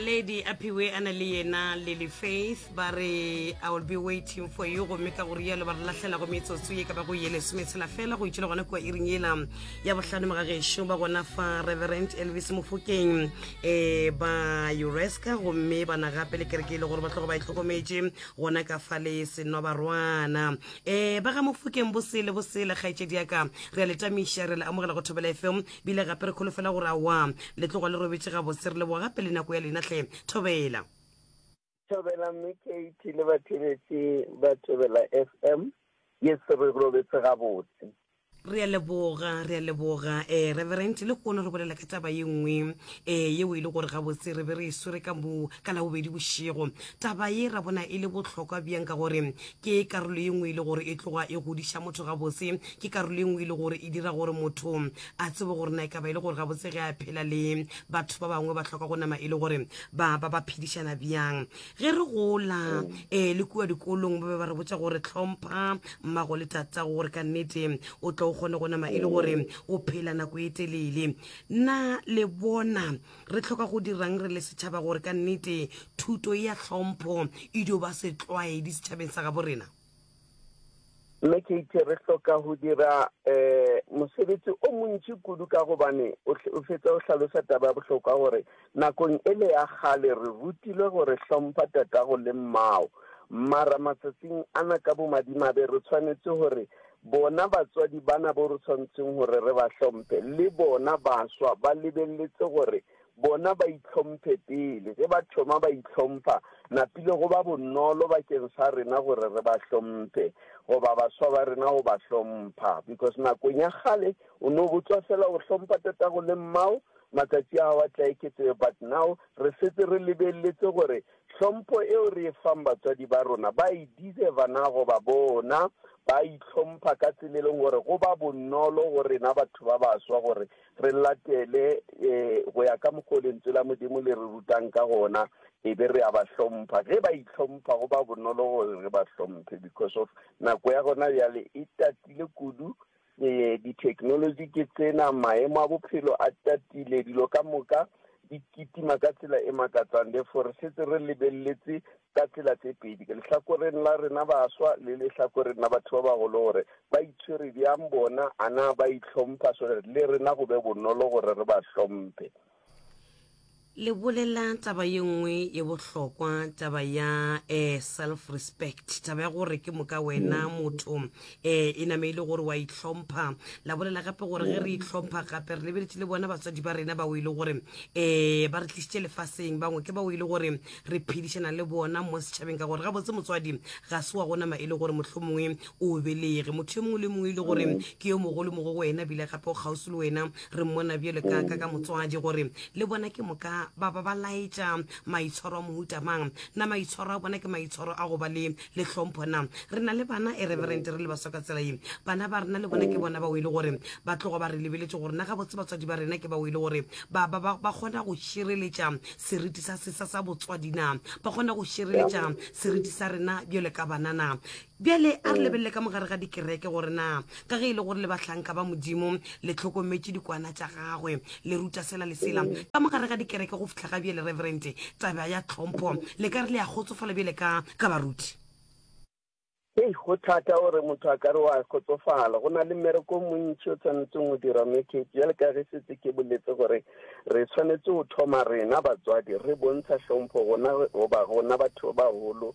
naledi a phiwe a na le yena lily faith ba re i will be waiting for you gomme ka go rialo ba re lahlela go metsotso ye ka ba go ye lesometshela fela go itšhile gona kua iring yela ya bohlano mogagešo ba gona fa reverend elvis mofokeng um ba uresca gomme ba na gape le kereke e le gore ba tlogo ba e tlhokometše gona ka fa le senwa barwana um ba ga mofokeng bosele bosele kgaetšedi yaka re a letamiša re le amogela go thobela fm bile gape re kholofela gore awa le tloga le robetše gabose re leboga gape le nako ya lena tle thobela thobela mme kate le batheletše ba thobela f m ye se re robetse gabotse re a leboga re a leboga um reverent le kgono re bolela ka taba ye nngwe um yeo e le gore gabotse re be re e swere ka mo ka labobedi bošego taba ye ra bona e le bohlokwa bjang ka gore Ke karolo ye nngwe e le gore e tloga e godiša motho gabotse. Ke karolo ye nngwe e le gore e dira gore motho a tsebe gore na e ka ba e le gore gabotse ge a phela le batho ba bangwe ba hloka go nama e le gore ba ba ba phedišana bjang. Ge re gola um le kua dikolong ba be ba re botša gore hlompha mmago le tatago gore ka nnete o tlo o kgone go nama e le gore o phela nako e telele. Na le bona Re hloka go dirang re le setšhaba gore ka nnete thuto ya hlompho e dio ba setlwaedi setšhabeng sa gabo rena? Mme Katie, re hloka go dira um mosebetsi o montši kudu ka gobane o fetsa o hlalosa taba ya bohlokwa gore nakong e le ya kgale re rutilwe gore hlompha tatago le mmao mara matsatsing ana ka bomadimabe re tshwanetse gore Bona batswadi bana bo re tshwanetseng gore re ba hlomphe, le bona baswa ba lebeletse gore bona ba itlhomphe pele. Ge ba thoma ba itlhompha, napile go ba bonolo bakeng sa rena gore re ba hlomphe goba baswa ba rena go ba hlompha. Because nakong ya kgale o no botswa fela o hlompha tatago le mmao, matsatsi a gago a tla eketsega, but now re setse re lebeletse gore Tlhompho eo re e fang batswadi ba rona ba e deserva na goba bona ba a itlhompha ka tsela e leng gore go ba bonolo go rena batho ba baswa gore re latele um go ya ka mokgwa o lentswe la Modimo le re rutang ka gona e be re a ba hlompha. Ge ba itlhompha go ba bonolo gore re ba hlomphe because of nako ya gona bjale e tatile kudu Ee, ditheknoloji ke tsena, maemo a bophelo a tatile, dilo ka moka di kitima ka tsela e makatsang. Therefore, re setse re lebeletse ka tsela tse pedi, ke lehlakoreng la rena baswa le lehlakoreng la batho ba bagolo, gore ba itshwere bjang bona, a na ba itlhompha so that le rena go be bonolo gore re ba hlomphe. le bolela taba ye nngwe ye bohlokwa taba ya eh, self respect taba ya gore ke moka wena mm. motho um e name e le gore wa itlhompha la bolela gape gore ge re mm. itlhompha gape re lebeletse le bona batswadi ba rena bao e le gore um ba re tlisitše lefaseng bangwe ke bao e le gore re phedišana le bona mo setšhabeng ka gore gabotse motswadi ga se wa gonama e le gore mohlomongwe o belege motho yo mongwe le mongwe ile gore ke yo mogolo mo go wena bile gape o kgauswi le wena re mmona bjale ka ka ka motswadi gore le bona ke moka ba ba ba laetša maitshwaro a mohuta mang na maitshwaro a bona ke maitshwaro a go ba le le hlompho na re na le bana e reverent re le baswa ka tsela ye bana ba rena le bona ke bona bao e le gore ba tlogo ba re lebeletse gore na gabotse batswadi ba rena ke bao e le gore ba ba ba ba kgona go šireletša seriti sa sesa sa botswadi na ba kgona go šireletša seriti sa rena bjale ka banana Bjale a re lebelele ka mogare ga dikereke gore na ka ge e le gore le bahlanka ba Modimo le tlhokometše dikwana tša gagwe le ruta sela le sela ka mogare ga dikereke go fihla ga bjale reverente taba ya tlhompho le ka re le a kgotsofala bjale ka ka baruti. Hei, go thata gore motho a ka re wa kgotsofala. Go na le mmereko o montši o tshwanetseng go dirwa mo Cape. Bjale ka ge setse ke boletse gore re tshwanetse go thoma rena batswadi re bontsha hlompho gona goba gona batho ba baholo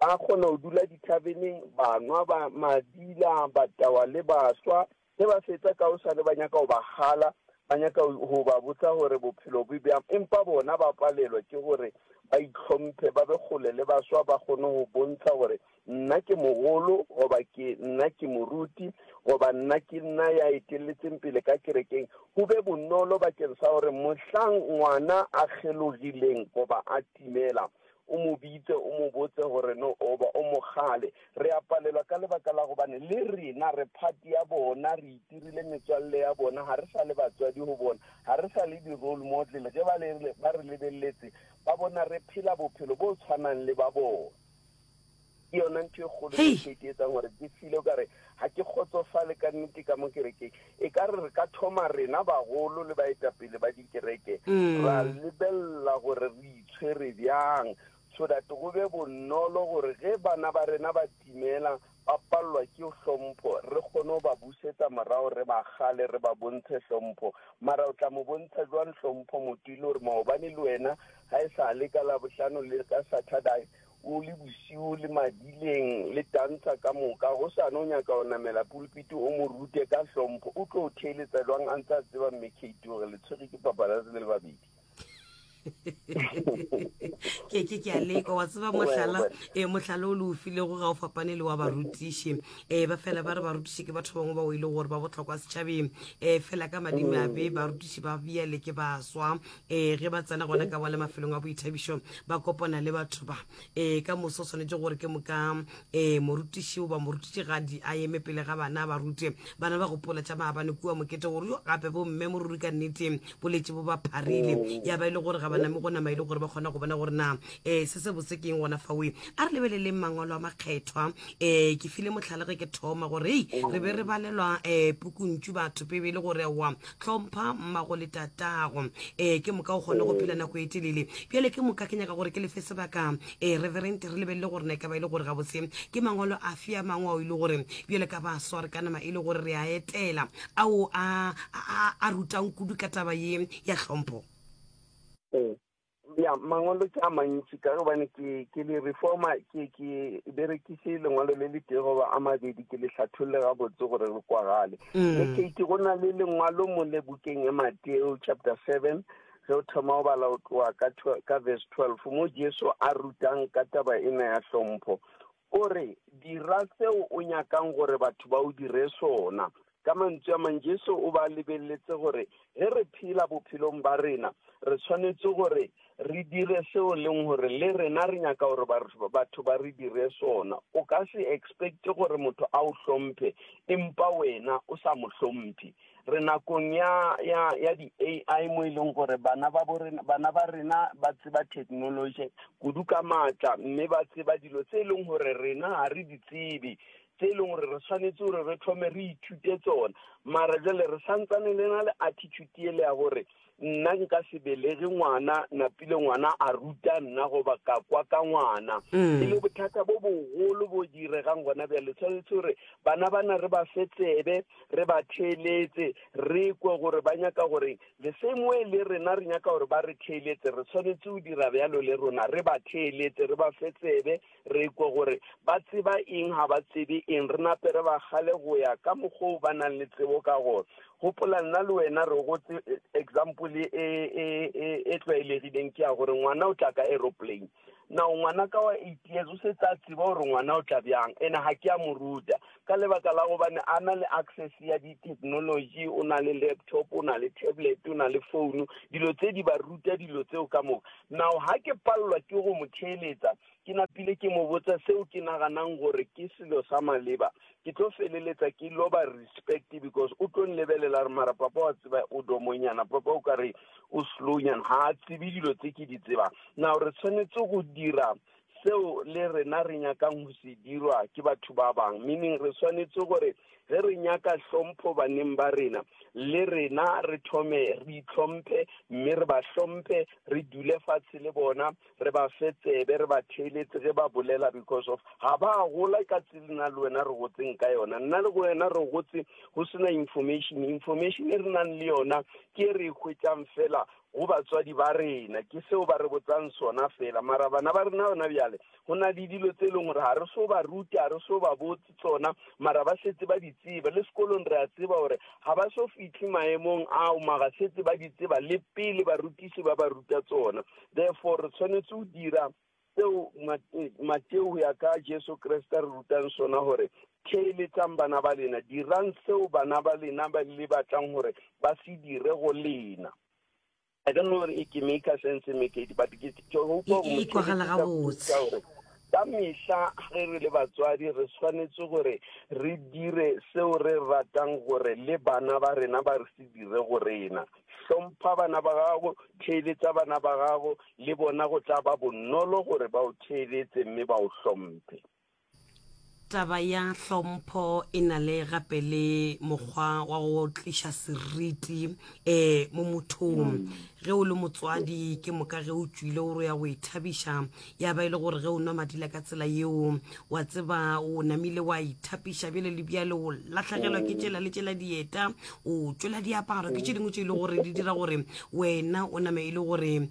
Ba kgona go dula dithabeneng, ba nwa, ba mabila, ba tawa le baswa. Ge ba fetsa ka gosane ba nyaka go ba kgala, ba nyaka go ba botsa gore bophelo bo bjang. Empa bona ba palelwa ke gore ba itlhomphe, ba be kgole le baswa, ba kgone go bontsha gore nna ke mogolo goba ke nna ke moruti goba nna ke nna ya eteletseng pele ka kerekeng. Go be bonolo bakeng sa gore mohlang ngwana a kgelogileng goba a timela, o mo bitse, o mo botse gore no oba o mogale. Re a palelwa ka lebaka la gobane le rena re phati ya bona, re itirile metswalle ya bona, ga re sa le batswadi go bona, ga re sa le di-role model. Ge ba le, ba re lebeletse, ba bona re phela bophelo bo tshwanang le ba bona. ke yona ntho e kgolo e ke e etsang gore ke file o kare ga ke kgotsofale ka nnete ka mo kerekeng e ka re re ka thoma rena bagolo le baetapele ba dikereke mm. ra lebelela gore re itshwere bjang so that go be bonolo gore ge bana ba rena ba timela ba palelwa ke hlompho re kgone go ba busetsa morago re ba gale re ba bontshe hlompho mara o tla mo bontsha jwang hlompho motho e le gore maobane le wena ga e sa le ka labohlano le ka saturday o le bosiu le madileng le tantsha ka moka go sane o nyaka go namela pulpiti o mo rute ka hlompho o tlo o theeletsa jwang a ntse a tseba mme kate gore le tshwere ke papalatse le le babedi ke ke ke a leka wa tseba mohlala um mohlala o le o filego ga o fapane le wa barutiši um eh, ba fela ba re barutiši ke batho bangwe bao e le gore ba botlhokwa setšhabeng um fela ka madimabe barutiši ba bjale ke baswa um ge ba tsena gona ka bale mafelong a boithabišo ba kopana le batho ba um ka moso o tshwanetse gore ke moka um morutiši goba morutišigadi a eme pele ga bana ba rute bana ba gopola tša maabane kua mokete gore yo gape bomme mo ruri ka nnete boletše bo ba pharile mm. ya ba e le gore ga ba name go nama e le gore ba kgona go bona gore na um se se bose keng gona fawe a re lebeleleng mangwalo a makgethwa um ke file motlhalege ke thoma gore ei re be re balelwa um pukuntšu batho pebe e le gore wa hlompha mmago le tatago ee ke moka o kgone go phela nako e telele bjale ke moka ke nyaka gore ke lefe sebaka ee reverent re lebelele gore na e ka ba e le gore gabotse ke mangwalo a fe a mangwe ao e le gore bjale ka ba sware ka nama e le gore re a etela ao a rutang kudu ka taba ye ya hlompho ee ya mangwalo ke a mantši ka gobane ke ke le reforma ke ke berekise lengwalo le le tee goba a mabedi ke le hlatholle gabotse gore le kwagale mme mm. kate go na le lengwalo mo le bukeng e mateo chapter seven ge o thoma go bala o tloa ka verse twelve mo jesu a rutang ka taba ena ya hlompho O re, Dira seo o nyakang gore batho ba o dire sona. Ka mantšu a mang, Jesu o be a lebeletse gore ge re phela bophelong ba rena, re swanetše gore re dire seo e leng gore le rena re nyaka gore batho ba re dire sona. O ka se expecte gore motho a o hlomphe empa wena o sa mo hlomphe. re nakong ya ya ya di AI mo e leng gore bana ba borena bana ba rena ba tseba technology kudu ka matla mme ba tseba dilo tse e leng gore rena ga re di tsebe tse e leng gore re tshwanetse gore re thome re ithute tsona mara jale re santsane le na le attitude ele ya gore nna nka se belege ngwana napile ngwana a ruta nna goba ka kwa ka ngwana mm. e le bothata bo bogolo bo diregang gona bjale tshwanetse gore bana bana re ba fe tsebe re ba theeletse re kwe gore ba nyaka gore le same way le rena re nyaka gore ba re theeletse re tshwanetse go dira bjalo le rona re ba theeletse re ba fe tsebe Re ikwe gore ba tseba eng ga ba tsebe eng, re nape re ba gale go ya ka mokgwa o ba nang le tsebo ka gona. Gopola, nna le wena re gotse, example e, e, e, e tlwaelegileng ke ya gore ngwana o tla ka aeroplane. Now, ngwana ka wa eight years o setse a tseba gore ngwana o tla bjang, ene ga ke a mo ruta. Ka lebaka la gobane a na le access ya di technology, o na le laptop, o na le tablet, o na le phone, dilo tse di ba ruta dilo tseo ka moka. Now ha ke palelwa ke go mo theeletsa, ke napile ke mo botsa seo ke naganang gore ke selo sa maleba, ke tlo feleletsa ke loba respect because o tlo nlebelela a re mara papa wa tseba o domonyana, papa o ka re o slow nyana, ha a tsebe dilo tse ke di tsebang. Now re tshwanetse go dira seo le rena re nyakang go se dirwa ke batho ba bang meaning re swanetse gore ge re nyaka hlompho baneng ba rena le rena re thome re itlhomphe mme re ba hlomphe re dule fatshe le bona re ba fe tsebe re ba theeletse ge ba bolela because of ga ba gola ka tsela nna le wena re gotseng ka yona nna le wena re gotse go sena information information e re nang le yona ke e re e hwetšang fela go batswadi ba rena ke seo ba re botsang sona fela mara bana ba rena yona bjale go na le dilo tse e leng gore ga re so ba rute ga re so ba botse tsona mara ba setse ba di tseba le sekolong re a tseba gore ga ba so fitlhe maemong ao maga setse ba di tseba le pele barutisi ba ba ruta tsona therefore re tshwanetse go dira Seo Mateo go ya ka Jesu Kriste re rutang sona gore theeletsang bana ba lena, dirang seo bana ba lena ba le batlang gore ba se dire go lena. I don't know gore e ke maker sense mekedi but ke hopa go gore ka mehla ge re le batswadi re tshwanetse gore re dire seo re ratang gore le bana ba rena ba re se dire go rena. Hlompha bana ba gago, theeletsa bana ba gago, le bona go tla ba bonolo gore ba o theeletse mme ba o hlomphe. Taba ya hlompho e na le gape le mokgwa wa go tliša seriti um mo mothong. Ge o le motswadi, ke moka ge o tšwile o re o ya go ithabiša, ya ba e le gore ge o nwa madila ka tsela yeo wa tseba o namile wa ithapiša bjale le bjale o latlhegelwa ke tšela le tšela dieta o tšwela diaparo ke tše dingwe tše e le gore di dira gore wena o name e le gore um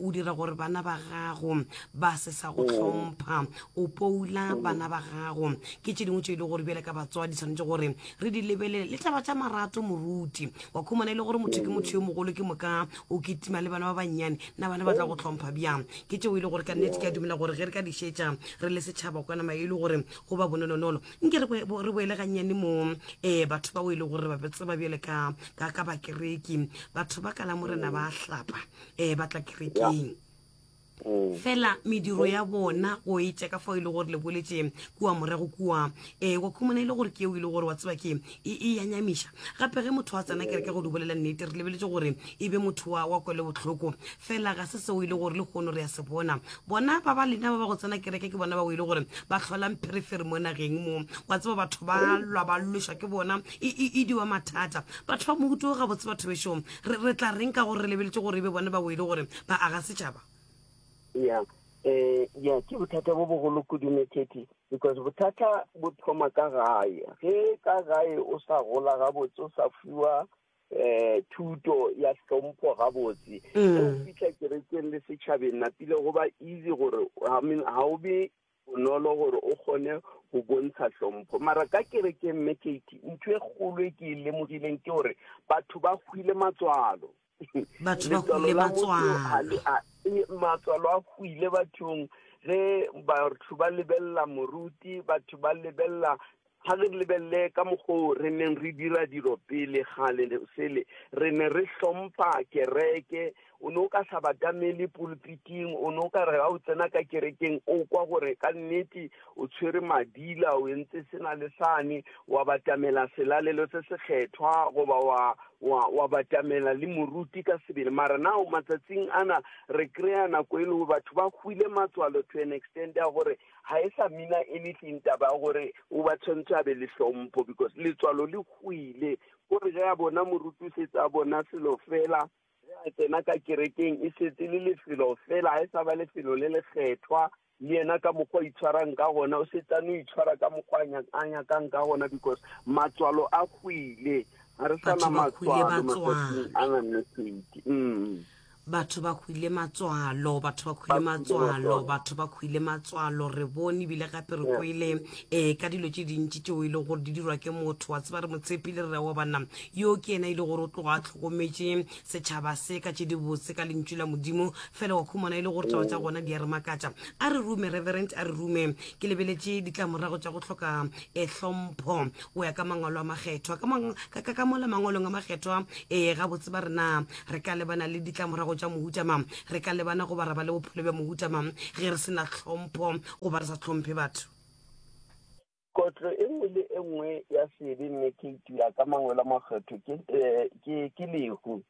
o dira gore bana ba gago ba se sa go tlhompha o poula bana ba gago ke tše dingwe tše e le gore bjale ka batsoa di tshwanetse gore re di lebelele le taba tša marato moruti wa khumana e le gore motho ke motho yo mogolo ke moka o ketima le bana ba bannyane na bana ba tla go tlhompha bjang ke tšeo e le gore ka nnete ke a dumela gore ge re ka di šetša re le setšhaba kwana mae e le gore go ba bonolonolo nke re bo- re boele gannyane mo um batho bao e le gore ba tseba bjale ka ka ka bakereki batho ba ka la morena ba hlapa um ba tla kerekeng Mm. fela mediro ya bona o etša ka fao e le gore le boletše kua morago kua um wa khumana e le gore ke eo e le gore wa tseba ke e, e ya nyamiša gape ge motho wa tsena kere ke go di bolela nnete re lebeletse gore e be motho wa wa kwele botlhoko fela ga se seo e le gore le kgono re ya se bona bona ba ba lena ba ba go tsena kereke ke bona ba o e le gore ba tlholang pherefere mo nageng mo wa tseba batho ba lwa ba lwešwa ke bona e, e, e diwa mathata batho ba mohuto ga botse batho bešong re, re tla reng ka gore re lebeletse gore e be bona ba o e le gore ba aga setšhaba ya um ya ke bothata bo bogolo kudu mekhethi Because bothata bo thoma ka gae. Ge ka gae o sa gola gabotse, o sa fiwa eh thuto ya hlompho gabotse mm. ge o fitlha kerekeng le setšhabeng napile go ba easy gore I mean ha o be bonolo gore o kgone go bontsha hlompho mara ka kerekeng mme kate ntho e kgolo e ke e lemogileng ke gore batho ba hwile matswalo Batho ba hwile batswang. Matswalo a hwile bathong ge batho ba lebelela moruti, batho ba lebelela ga re lebelele ka mokgoo re neng re dira dilo pele gale sele re ne re hlompha kereke o ne o ka sa batamele pulpiting o ne o ka re ga o tsena ka kerekeng o kwa gore ka nnete o tshwere madila o entse sena le sane wa batamela selalelo se se kgethwa goba wa wa wa batamela le moruti ka sebele mara nao matsatsing ana re kry-a nako e lego batho ba hwile matswalo to an extent ya gore ga e sa mina anything taba ya gore o ba tshwanetse a be le tlhompho because letswalo le hwile gore ge a bona moruti o setse a bona selo fela Ge a tsena ka kerekeng, e šetse le lefelo fela, ga e sa ba lefelo le lekgethwa. Le yena ka mokgwa o itshwarang ka gona, o šetse a no itshwara ka mokgwa a nyakang ka gona because matswalo a hwile. Ga re sa na matswalo matsatsing a na nnetedi. Mm. batho ba hwile matswalo batho ba hwile matswalo batho ba hwile matswalo re bone ebile gape re kwele um ka dilo tse dintši tšeo e leng gore di dirwa ke motho wa tseba re mo tshepile re re wa banna Yo ke yena e le gore o tloga a tlhokometše setšhaba se ka tše dibotse ka lentšu la Modimo. Fela wa khumana e le gore taba tša gona di a re makatša. A re rume, Reverend, a re rume. Ke lebeletše ditlamorago tša go hloka eh, hlompho go ya ka Mangwalo a Makgethwa. Ka, mang, ka, ka, ka mola Mangwalong a Makgethwa, ee, gabotse ba re na re ka lebana le ditlamorago tša mohuta mang. Re ka lebana goba ra ba le bophelo bja mohuta mang ge re se na hlompho goba re sa hlomphe batho. Kotlo e nngwe le e nngwe ya sebe mme ke itira ka mangwelo a makgetho ke, eh, ke, ke lehu.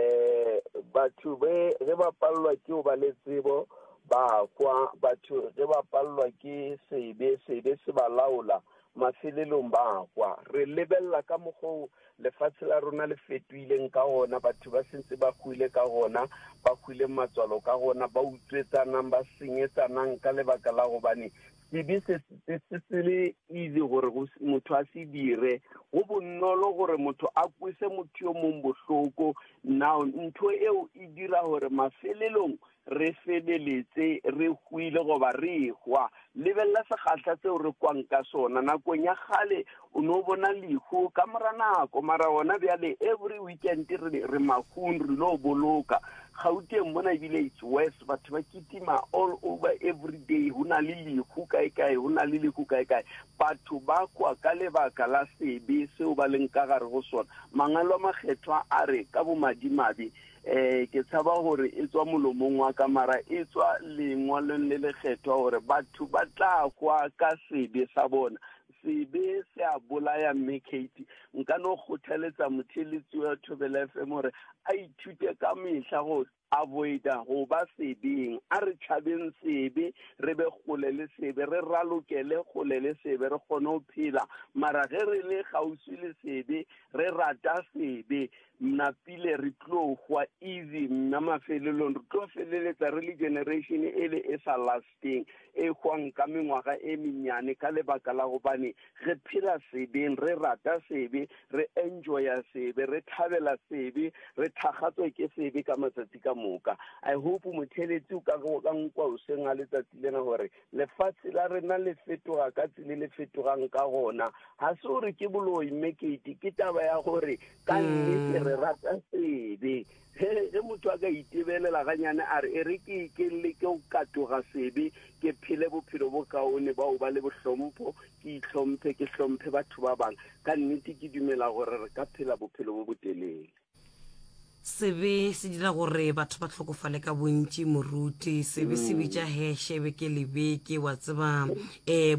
Eh, batho be ge ba palelwa ke go ba le tsebo ba kwa, batho ge ba palelwa ke sebe, sebe se ba laola, mafelelong ba kwa. Re lebelela ka mokgwa wo lefase la rona le fetohileng ka gona, batho ba se ntse ba hwile ka gona, ba hwileng matswalo ka gona, ba utswetsanang, ba senyetsanang ka lebaka la gobane Sebe se, se, se, se le easy gore go, motho a se dire. Go bonolo gore motho a kwese motho yo mong bohloko. Now, ntho eo e dira gore mafelelong re feleletse re hwile goba re hwa. Lebelela sekgahla seo re kwang ka sona. Nakong ya kgale O no bona lehu ka mora nako, mara gona bjale every weekend re, re mahung re lo boloka. Gauteng mona ebile it's worse, batho ba kitima all over every day, ho na le lehu kae kae, ho na le lehu kae kae. Batho ba kwa ka lebaka la sebe seo ba leng ka gare go sona. Mangwalo a makgethwa a re ka bomadimabe, eh ke tshaba gore e tswa molomong wa ka mara e tswa lengwalong le lekgethwa gore batho ba tla kwa ka sebe sa bona Sebe se a bolaya Mme Katie. Nka no kgothaletsa motheeletsi wa Thobela FM gore a ithute ka mehla go avoida go ba sebeng. A re tšhabeng sebe, re be kgole le sebe, re ralokele kgole le sebe, re kgone go phela. Mara ge re le kgauswi le sebe, re rata sebe, mna pile re tlo hwa easy, mna mafelelong re tlo feleletsa re le generation e le e sa last. Kristeng, ehwang ka mengwaga e mennyane ka lebaka la gobane re phela sebeng, re rata sebe, re enjoya sebe, re thabela sebe, re thakgatswa ke sebe ka matsatsi ka moka. I hope motheletsi o ka ka nkwa oseng a letsatsi lena gore lefatshe la rena le fetoga ka tsile le fetogang ka gona. Ga se gore ke boloi mme kete ke taba ya gore ka nnete re rata sebe. He, ge motho a ka itebelela ganyane a re e re ke ke leke go katoga sebe ke phele bophelo bo kaone bao ba le bohlompho ke itlhomphe ke hlomphe batho ba bang ka nnete ke dumela gore re ka phela bophelo bo botelele sebe se dira gore batho ba tlhokofale ka bontši moruti sebe se bitša mm. heshe beke le beke wa tseba um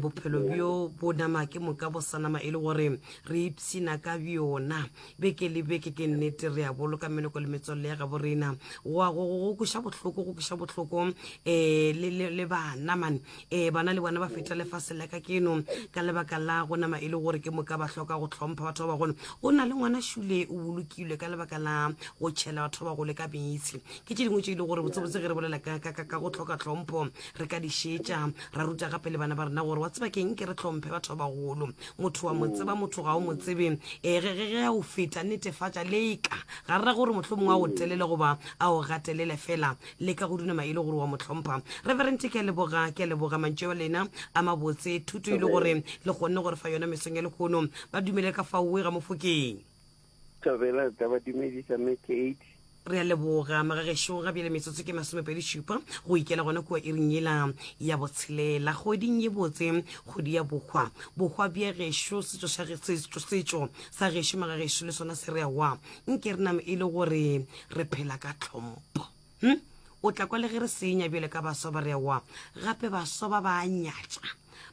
bophelo bjo bo nama ke moka bo sa nama e le gore re ipshina ka bjona Beke le beke, ke nnete, re a boloka meloko le metswalle ya gabo rena. Wa go, go, go kweša bohloko, go kweša bohloko. E, le, le, le bana, man. E, bana le bona ba feta lefase la ka keno, ka lebaka la go nama e le gore ke moka ba hloka go hlompha batho ba bagolo. Go na le ngwana šule o bolokilwe ka lebaka la go tšhela batho ba bagolo ka meetse. Ke tše dingwe tše e le gore botsebotse ge re bolela ka, ka, ka, ka go hloka tlhompho, re ka di šetša, ra ruta gape le bana ba rena gore wa tseba keng, ke re hlomphe batho ba bagolo. motho wa mo tseba motho ga o mo tsebe ee ge ge ge a o feta netefatša leka ga re ra gore mohlho mongwe a o telele goba a o gatelele fela leka go dunama e le gore wa mo tlhompha reverente ke a leboga ke a leboga mantšu wa lena a mabotse thuto e le gore le kgonne gore fa yona mesong ya lekgono ba dumele ka faoe ga mofokeng Thobela tla ba dumedisa me Kate. Re a leboga magagešo ga bjale metsotso ke masomepedi šupa go ikela gona kua iring yela ya botshelela kgoding ye botse kgodi ya bohwa bohwa bja gešo setšo sa ge- setšo setšo sa gešo magagešo le sona se re awa nke re name e le gore re phela ka tlhompo hm o tla kwa le ge re senya bjale ka baswa ba re wa gape baswa ba ba nyatša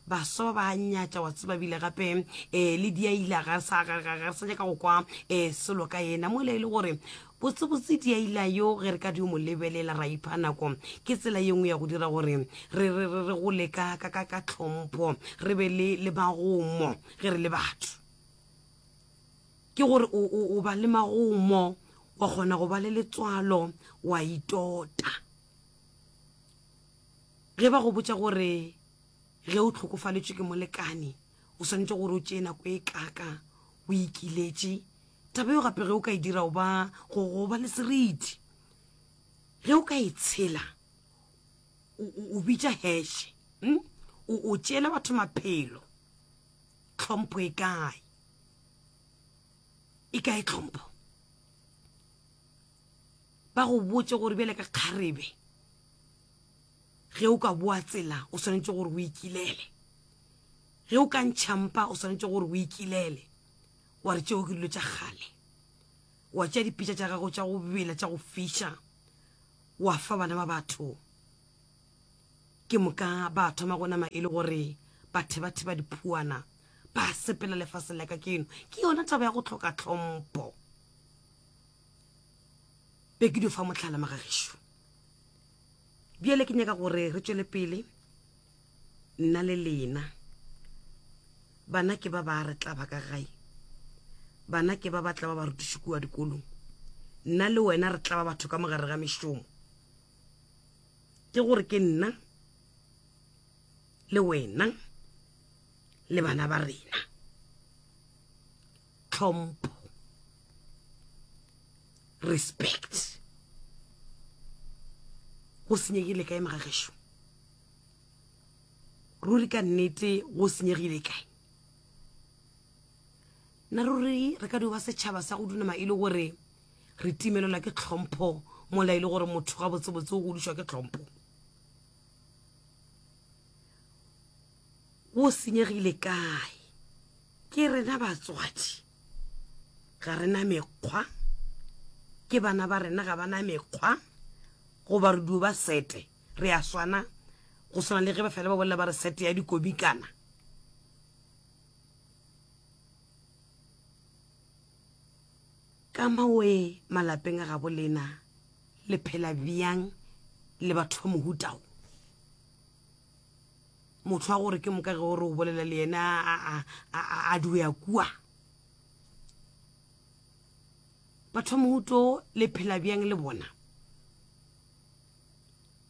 baswa ba ba nyatša wa tseba bile gape um le diaila ga re sa nyaka go kwa um selo ka ena mo le e le gore botsebotse diaila yo ge re ka di o mo lebelela ra ipha nako ke tsela ye nngwe ya go dira gore re go leka ka tlhompho re be le magomo ge re le batho ke gore o ba le magomo wa kgona go ba le letswalo wa itota ge ba go botša gore ge o tlhokofaletšwe ke molekane o swanetše gore o tšee nako e kaka o ikiletše taba yo gape ge o ka e dira oba go ba le seriti ge o ka e tshela o bitša heshe hmm? o tšeela batho maphelo tlhompho e kae e kae tlhompho ba go botse gore bjale ka kgarebe ge o ka boa tsela o swanetše gore o ikilele ge o ka ntšhampa o swanetše gore o ikilele wa re tšeo ke dilo tša kgale wa tšea dipitša tša gago tša go bela tša go fiša wa fa bana ba batho Ke moka ba thoma go nama e le gore bathebatheba diphuana ba sepela lefaseng la ka ke eno ke yona taba ya go tlhoka tlhompho be ke di fa motlhala magagišo bjale ke nyaka gore re tšwele pele nna le lena bana ke ba ba re tla ba ka gae bana ke ba ba tla ba ba rutiše kua dikolong nna le wena re tla ba batho ka mogare ga mešomo ke gore ke nna le wena le bana ba rena tlhompho respect go senyegile kae magagesho ruri ka nnete go senyegile kae nna ruri re ka dio ba setšhaba sa go dunama e le gore re timelelwa ke tlhompho mola e le gore motho ga botsebotse o godišwa ke tlhompho wo senyegile kae ke rena batswadi ga rena mekgwa ke bana ba rena ga bana mekgwa goba re dio ba sete re a swana go swana le ge ba fela ba bolela ba re sete ya dikomikana Ka mawee malapeng a gabo lena le phela bjang le batho ba mohuta wo? Motho wa gore ke moka ge o re o bolela le yena a duea kua. Batho ba mohuta wo le phela bjang le bona?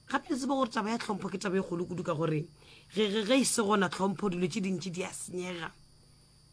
gape le tseba gore taba ya tlhompho ke taba e kgolo kudu ka gore ge e se gona tlhompho dilo tše dintši di a senyega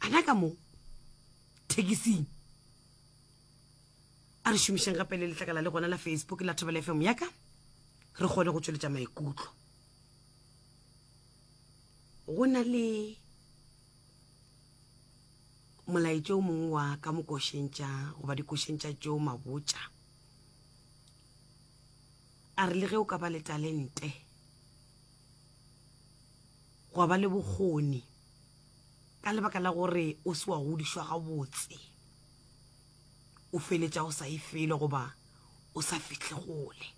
a na ka mo thekising a re šomišang gape le letlakala le gona la facebook la thobela fm ya ka re kgone go tsweletša maikutlo go na le molaetša o mongwe wa ka mokošeng tša goba dikošeng tša tšeo mabotša a re le ge o ka ba le talente gwa ba le bokgoni Ka lebaka la gore o se wa godišwa gabotse, o feletša o sa ye felo goba o sa fihle kgole.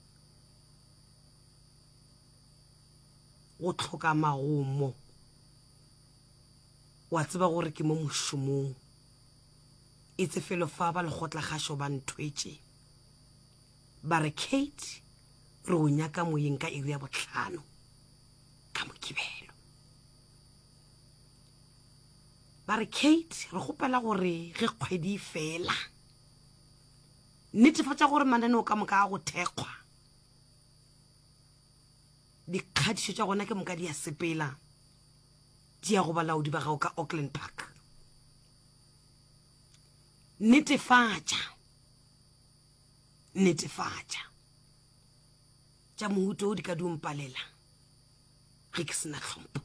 Go tlhoka magomo, wa tseba gore ke mo mošomong, e tse felo fa ba lekgotlakgašo ba nthwetše ba re, Kate, re go nyaka moyeng ka iri ya bohlano. ka mokibelo ba re kate re gopela gore ge kgwedi fela netefatša gore mananeo ka moka a go thekgwa dikgadišo tša gona ke moka di a sepela di ya go balaodi ba gago ka auckland park netefatša netefatša tša mohuto o di ka diompalela ge ke sena tlhompho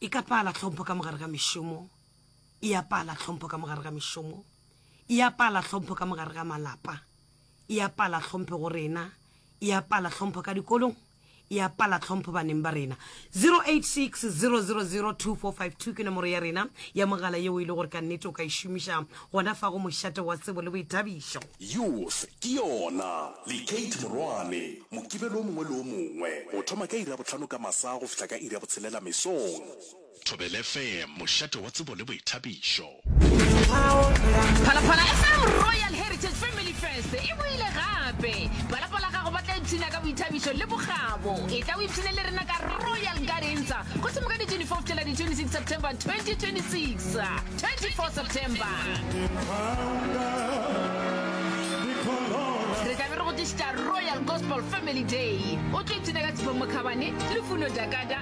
e ka pala tlhompho ka mogare ga mešomo e ya pala tlhompho ka mogare ga mešomo e ya pala tlhompho ka mogare ga malapa e ya pala tlhompho go rena e ya pala tlhompho ka dikolong e a pala tlhompho baneng ba rena 0860002452 ke nomoro ya rena ya mogala yeo e le gore ka nnete o ka e šomiša gona fa go mošate wa tsebo le boithabišo Youth ke yona, le Kate Morwane, Mokibelo o mongwe le o mongwe, go thoma ka iri ya bohlano ka masa go fihla ka iri ya botshelela mesong. Thobela FM, mošate wa tsebo le boithabišo. Phalaphala FM Royal Heritage Family Fest e boile gape. Phalaphala gago ba tla ipshina ka boithabišo le bokgabo. E tla o ipshine le rena ka Royal Gardens go thoma ka di 24 go tšwela di 26 September 2026. 24 September re tlabe re go tlišitša Royal Gospel Family Day. O tlo ipshina ka Tshifo Mokhabane, Lufuno Dakada,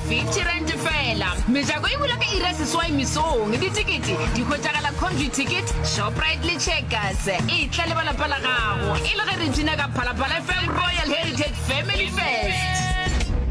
50 rand fela mejako e bula ka ira seswai mesong ditikete di hwetšagala country ticket shoprite le checkers e tla le balapa la gago e le ge re bina ka phalaphala fm royal heritage family fest